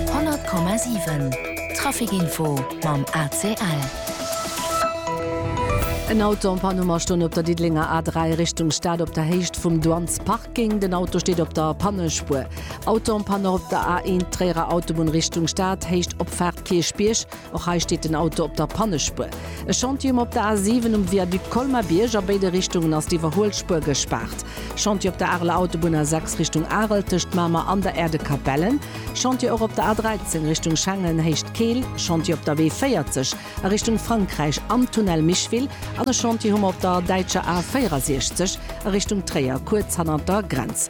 100,7 Trafic-Info mam ACL. En Auto en Panne um Astonn op der Diddelenger A3 Richtung Stad op der Héicht vum Douanesparking. Den Auto steet op der Pannespuer. Auto en Panne och op der A1 Tréierer Autobunn Richtung Stad, Héicht Opfaart Kierchbierg. Och hei steet den Auto op der Pannespuer. E Chantier um op der A 7 um Viaduc Colmar-Bierg, a béide Richtungen ass d'Iwwerhuelspuer gespaart. Chantier op der Areler Autobunn A 6 Richtung Arel tëscht Mamer an der Aire de Capellen. Chantier och op der A 13 Richtung Schengen Héicht Keel. Chantier op der W 40 a Richtung Frankräich am Tunnel Micheville. An e Chantier hu mer op der däitscher A 64 a Richtung Tréier, kuerz hannert der Grenz.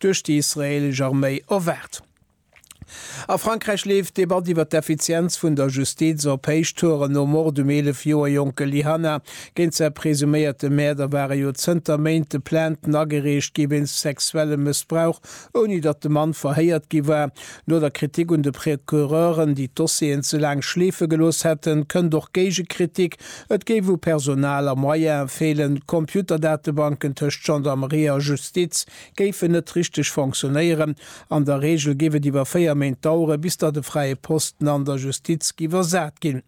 duerch déi israeelesch Arméi erwaart. A Frankräich leeft d'Debatt iwwer d'Effizienz vun der Justiz op Héichtouren. Nom Mord um 11 Joer jonke Lyhanna, géint säi presuméierte Mäerder ware jo zënter Méinte Plainten agereecht gi wéinst sexuellem Mëssbrauch, ouni datt de Mann verhéiert gi war. No der Kritik un de Procureuren, déi d'Dossieren ze laang schleefe gelooss hätten, kënnt och Géigekritik, et géif u Personal a Moyene feelen. D'Computerdatebanken tëscht Gendarmerie a Justiz, géifen net richteg fonctionnéieren. An der Reegel géif et iwwer véier Méint dauere bis datt e fräie Posten an der Justiz gi versat ginn.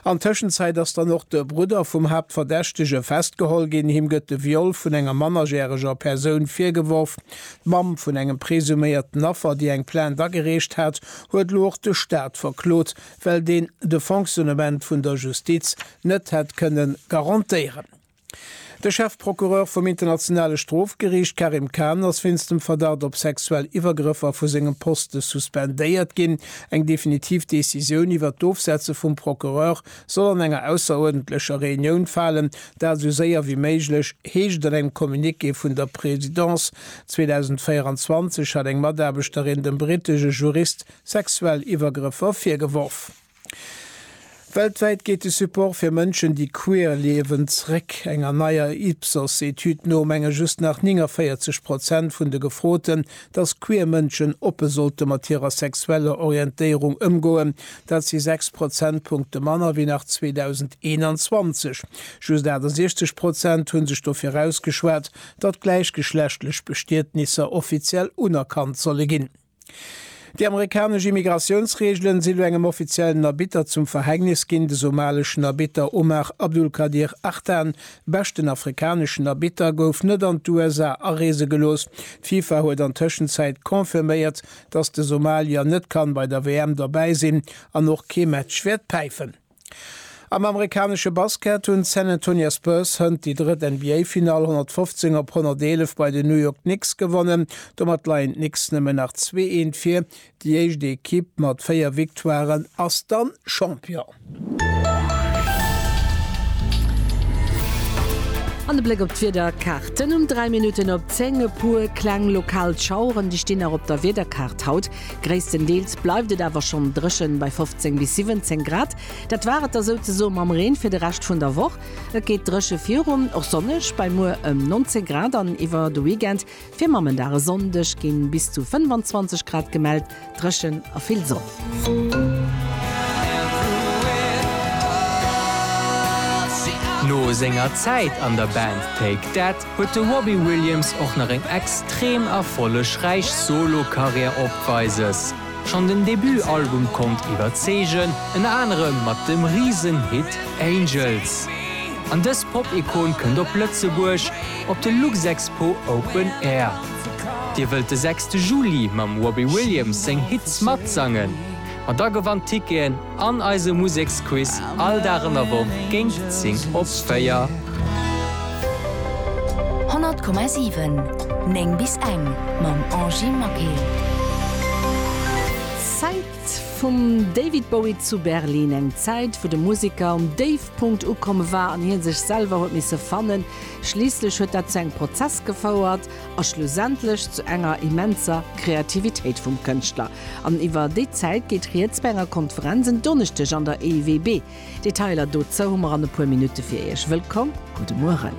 An Tëschenzäit ass dann och de Brudder vum Haaptverdächtege festgeholl ginn. Him gëtt de Viol vun enger mannerjäreger Persoun virgeworf. D'Mamm vun engem presuméierten Affer, déi eng Plainte agereecht hat, huet elo och de Staat verklot, well deen de Fonctionnement vun der Justiz net hätt kënne garantéieren. De Chefprocureur vum Internationale Strofgeriicht Karim Khan ass wéinst dem Verdacht op sexuell Iwwergrëffer vu sengem Poste suspendéiert ginn. Eng definitiv Decisioun iwwert d'Ofsetze vum Procureur soll an enger ausseruerdentlecher Reunioun falen, dat esou séier wéi méiglech, heescht et an engem Communiqué vun der Presidence. 2024 hat eng Mataarbechterin dem brittesche Jurist sexuell Iwwergrëffer virgeworf. Weltwäit geet de Support fir Mënschen, déi queer liewen, zréck. Enger neier Ipsos-Etüd no menge just nach 49 Prozent vun de Gefroten, datt queer Mënschen oppe sollte mat hirer sexueller Orientéierung ëmgoen. Dat si 6 Prozentpunkte manner wéi nach 2021. Just 68 Prozent hu sech dofir ausgeschwat, datt gläichgeschlechtlech Bestietnisser offiziell unerkannt solle ginn. Déi amerikanesch Immigratiounsreegelen si lo engem offiziellen Arbitter zum Verhängnis ginn. De somaleschen Arbitter Omar Abdulkadir Artan, beschten afrikaneschen Arbitter, gouf net an d'USA areese gelooss. D'FIFA huet an Tëschenzäit confirméiert, datt de Somalier net kann bei der WM derbäi sinn an och kee Match wäert päifen. Am amerikanesche Basket hunn d'San Antonia Spurs hënt déi drëtt NBA-Finall 115 op 111 bei den New York Knicks gewonnen. Domat leien d'Knicks nëmmen nach zwee Eent vir. Déi éischt Ekipp mat véier Victoiren ass dann Champion. An de Bléck op d'Wiederkaart, den um 3 Minutten op 10. E puer kleng lokal Schaueren, déi stinn nach op der Wiederkaart haut. Gréisstendeels bleift et awer schonn dréchen, bei 15 bis 17 Grad. Dat war et da souzesoe mam Reen fir de Rescht vun der Woch. Et geet dréche virun, och sonneg bei muer ëm 19 Grad an iwwer de Weekend. Fir Mammendag e Sonndeg ginn bis zu 25 Grad gemellt, dréchen a vill Sonn. No senger Zäit an der Band Take That huet de Robbie Williams och nach eng extrem erfollegräich Solo-Karriär opweises. Schonn den Debut-Album konnt iwwerzeegen, ënner anerem mat dem Risen-Hit Angels. An dës Pop-Ikon kënnt op Lëtzebuerg op de Luxexpo Open Air. Dir wëllt de sechste Juli mam Robbie Williams seng Hits matsangen? Ma da gewannt Ticketen An eise Museksquiz all Dag an der Woch géint 10 op 4. 100,7 9 bis eng mam Angie Maquet. D'Zäit vum David Bowie zu Berlin, eng Zäit wou de Museker um Déifpunkt ukomm war an hie sech selwer huet misse fannen. Schliisslech huet dat zu engem Prozess gefouert a schlussendlech zu enger immenser Kreativitéit vum Kënschtler. An iwwer déi Zäit geet rieds bei enger Konferenz en Donneschdeg an der EIWB. Detailer dozou hu mer an e puer Minutte fir Iech. Wëllkomm, gudde Mueren.